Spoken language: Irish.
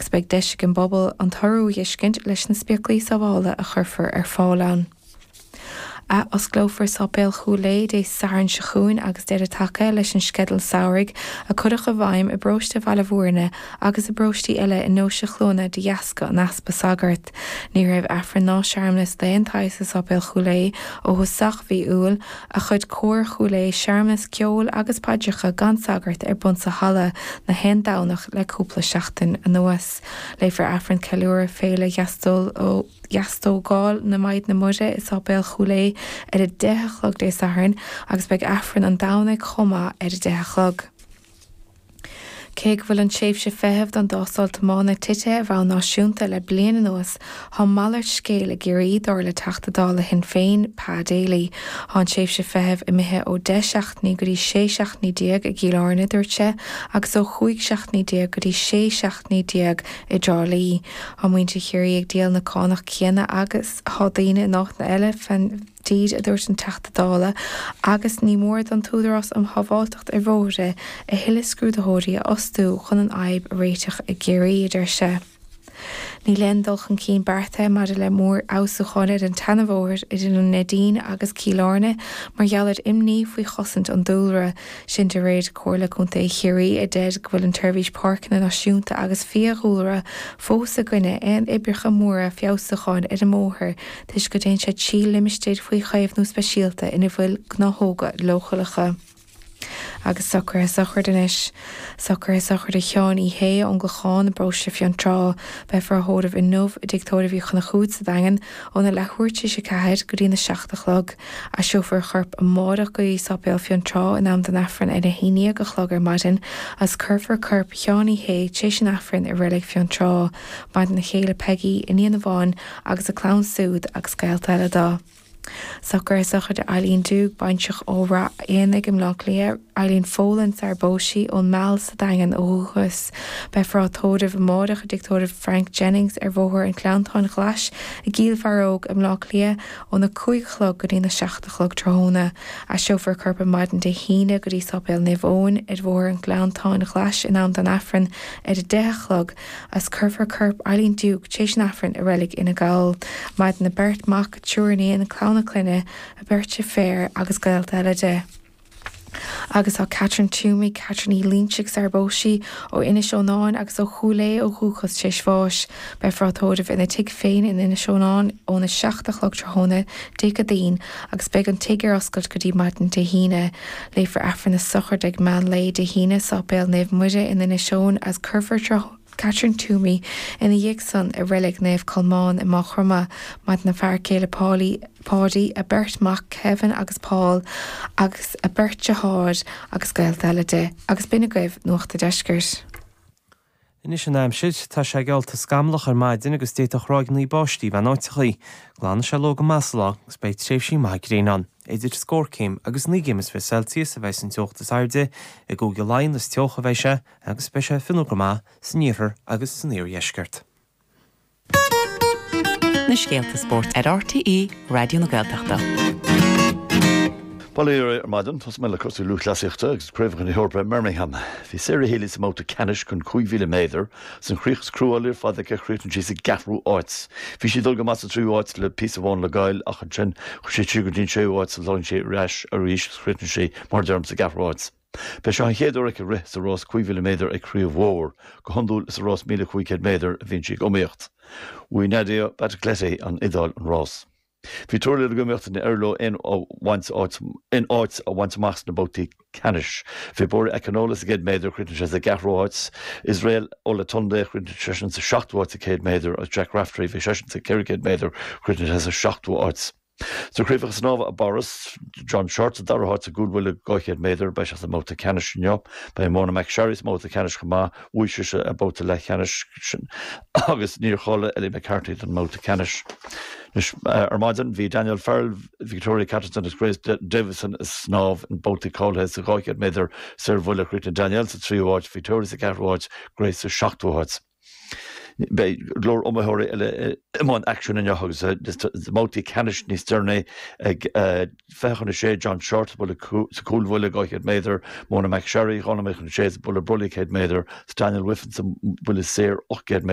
agus beidh deis ag an bpobal an t-urú a dh'fheiscint leis na spéaclaí sábhála a chuirfear ar fáil ann. Athosclófar Sáipéal Chúil Aodha Dé Sathairn seo chugainn agus deireadh tagtha leis an sceideal samhraidh a cuireadh i bhfeidhm i bparóiste Bhaile Mhúirne agus i bparóistí eile i nDeoise Chluana de dheasca an easpa sagart. Ní raibh Aifreann ná searmanas d'aon tsaghas i Sáipéal Chúil Aodha ó thosach mhí Iúil ach chuir Cór Chúil Aodha searmanas ceoil agus paidreacha gan sagart ar bun sa halla gach aon Domhnach le cúpla seachtain anuas. Léifear Aifreann Ceiliúrtha Féile Dheastógáil na Maighdine Muire i Sáipéal Chúil Aodha ar a deich a chlog Dé Sathairn agus beidh Aifreann an Domhnaigh chomh maith ar a deich a chlog. Cé go bhfuil an tréimhse feithimh don dtástáil tiomána titithe ar bhonn náisiúnta le bliain anuas, tá malairt scéil i gCiarraí, dar le Teachta Dála Shinn Féin, Pa Daly. Tá an tréimhse feithimh imithe ó 10 seachtainí go dtí 16 seachtainí i gCill Airne, dúirt se, agus ó 15 seachtainí go dtí 16 seachtainí i dTrá Lí. Tá muintir Chiarraí ag díol na cánach céanna agus atá daoine in áiteanna eile, dtír, a dúirt an Teachta Dála, agus ní mór don tÚdarás um Shábháilteacht ar Bhóithre a thuilleadh scrúdaitheoirí a fhostú chun an fhadhb a réiteach i gCiarraí, a deir sé. Níl aon dul chun cinn beartaithe maidir le mórfheabhsúcháin ar an tseanabhóthar idir an Neidín agus Cill Airne mar gheall ar imní faoi chosaint an dúlra, sin de réir Chomhairle Contae Chiarraí a deir go bhfuil an tSeirbhís Páirceanna Náisiúnta agus Fiadhúlra fós i gcoinne aon oibreacha móra feabhsúcháin ar an mbóthar. toisc go dtéann sé trí limistéir faoi chaomhnú speisialta ina bhfuil gnáthóga leochaileacha agus socruithe sochraide anois, socruithe sochraide Sheáin Uí Shé ón gClochán i bparóiste Fionntrá. Beifear á thórramh inniu i dTigh Tórraimh Uí Chonchúir sa Daingean óna leathuair tar éis a ceathair go dtína 7 a chlog. Aistreofar a chorp amárach go dtí Sáipéal Fionntrá in am don Aifreann ar a haon déag a chlog ar maidin agus cuirfear corp Sheáin Uí Shé tar éis an Aifrinn i Reilig Fionntrá. Maireann a chéile Peigí, iníon amháin, agus a clann súd agus gaolta eile do. Socruithe sochraide Eileen Duke, baintreach ó Ráth Éanaigh i mBleá Cliath, Eileen Folan, sarar phós sí, ón Meal sa Daingean ó dhúchas. Beifear á tórramh amáireach i dTigh Tórraimh Frank Jennings ar Bhóthar an Ghleanntáin Ghlais i gCill Bharróg i mBleá Cliath óna cúig a chlog go dtína seacht a chlog tráthnóna. Aistreofar a corp ar maidin Dé hAoine go dtí Sáipéal Naomh Eoin ar Bhóthar an Ghleanntáin Ghlais in am don Aifreann ar a deich a chlog. agus cuirfear corp Eileen Duke tréis an Aifrinn i reilig Fhine Gall. Maireann a beirt mac, triúr iníon, clann a clainne, a beirt deirféar agus gaolta eile di. Agus tá Catherine Twomey, Catherine Ní Loinsigh sarar phós sí ó Inis Eonáin agus ó Chúil Aodha ó dhúchas tréis bháis. Beifear á tórramh ina tigh féin in Inis Eonáin óna 7 a chlog tráthnóna Dé Céadaoin agus beidh an tig ar oscailt go dtí maidin Dé hAoine. Léifear Aifreann na Sochraide ag meán lae Dé hAoine, Sáipéal Naomh Muire in Inis Céin agus cuirfear Catherine Toomey ina dhiaidh san i Reilig Naomh Colmán i Máigh Chromtha. Maireann a fear céile Paulie, Paudie, a beirt mhac Kevin agus Paul agus a beirt deartháir agus gaolta eile, agus b'in agaibh Nuacht a' Deiscirt. Anois an aimsir, tá sé geallta scamallach ar maidin agus d'fhéadfadh ráigeannaí báistí bheith in áiteachaí. Glanfaidh siad leo go moch sa ló agus beidh tréimhsí maithe gréine ann. Idir scór céim agus naoi gcéim is fiche Celsius a bheidh an teocht is airde. I gCúige Laighean is teoch a bheidh sé agus beidh sé fionnuar go maith san iarthar agus san iardheisceart. na scéalta spóirt ar RTÉ Raidió na Gaeltachta. Bail oraibh ar maidin, tosóidh mé le cúrsaí lúthchleasaíochta agus Craobhacha na hEorpa i mBirmingham. Bhí Sarah Healy sa mbabhta ceannais don 5,000 méadar. Is an chríoch is cruálaí ar fad aici a chríochnaigh sí sa gceathrú háit. Bhí sí ag dul go maith sa tríú háit le píosa amháin le ghoil ach ansin chuaigh sí siar go dtí an séú háit ach throid sí ar ais arís agus chríochnaigh sí, mar a deirim, sa gceathrú háit. B'é seo an chéad uair aici rith sa rás 5,000 méadar ag craobh mhór. Go hiondúil is sa rás 1,500 méadar a bhíonn sí ag iomaíocht. Bhuaigh Nadia Battocletti ón Iodáil an rás. Bhí triúr eile ag iomaíocht, níor éirigh leo aon áit a bhaint amach sna babhtaí ceannais. Bhí Bori Akinola sa gcéad méadar, chríochnaigh sé sa gceathrú háit. Israel Olatunde, chríochnaigh seisean sa seachtú háit sa 100 méadar agus Jack Raftery, bhí seisean sa 400 méadar, chríochnaigh sé sa seachtú háit. Sna Craobhacha Snámha i bPáras, John Shortt sa dara háit sa gcúlbhuille 200 méadar, beidh sé sa mbabhta ceannais inniu. Beidh Mona McSharry sa mbabhta ceannais chomh maith, bhuaigh sise a babhta leathcheannais agus níor cháiligh Ellie McCartney don mbabhta ceannais. Anois ar maidin, bhí Danielle Farrell, Victoria Catterson agus Grace Davison ag snámh sna babhtaí cáilithe sa 200 méadar saorbhuille. Chríochnaigh Danielle sa tríú háit, Victoria sa cheathrú háit, Grace sa seachtú háit. Beidh go leor iomaitheoirí eile i mbun aicsin inniu agus babhtaí ceannais níos deireanaí ag fiche chun a 6, John Shortt sa bhuille sa chúlbhuille 200 méadar, Mona McSharry, dhá nóiméad chun a 6 sa buille brollaigh 100 méadar, Daniel Wiffen sa buille saor 800 méadar.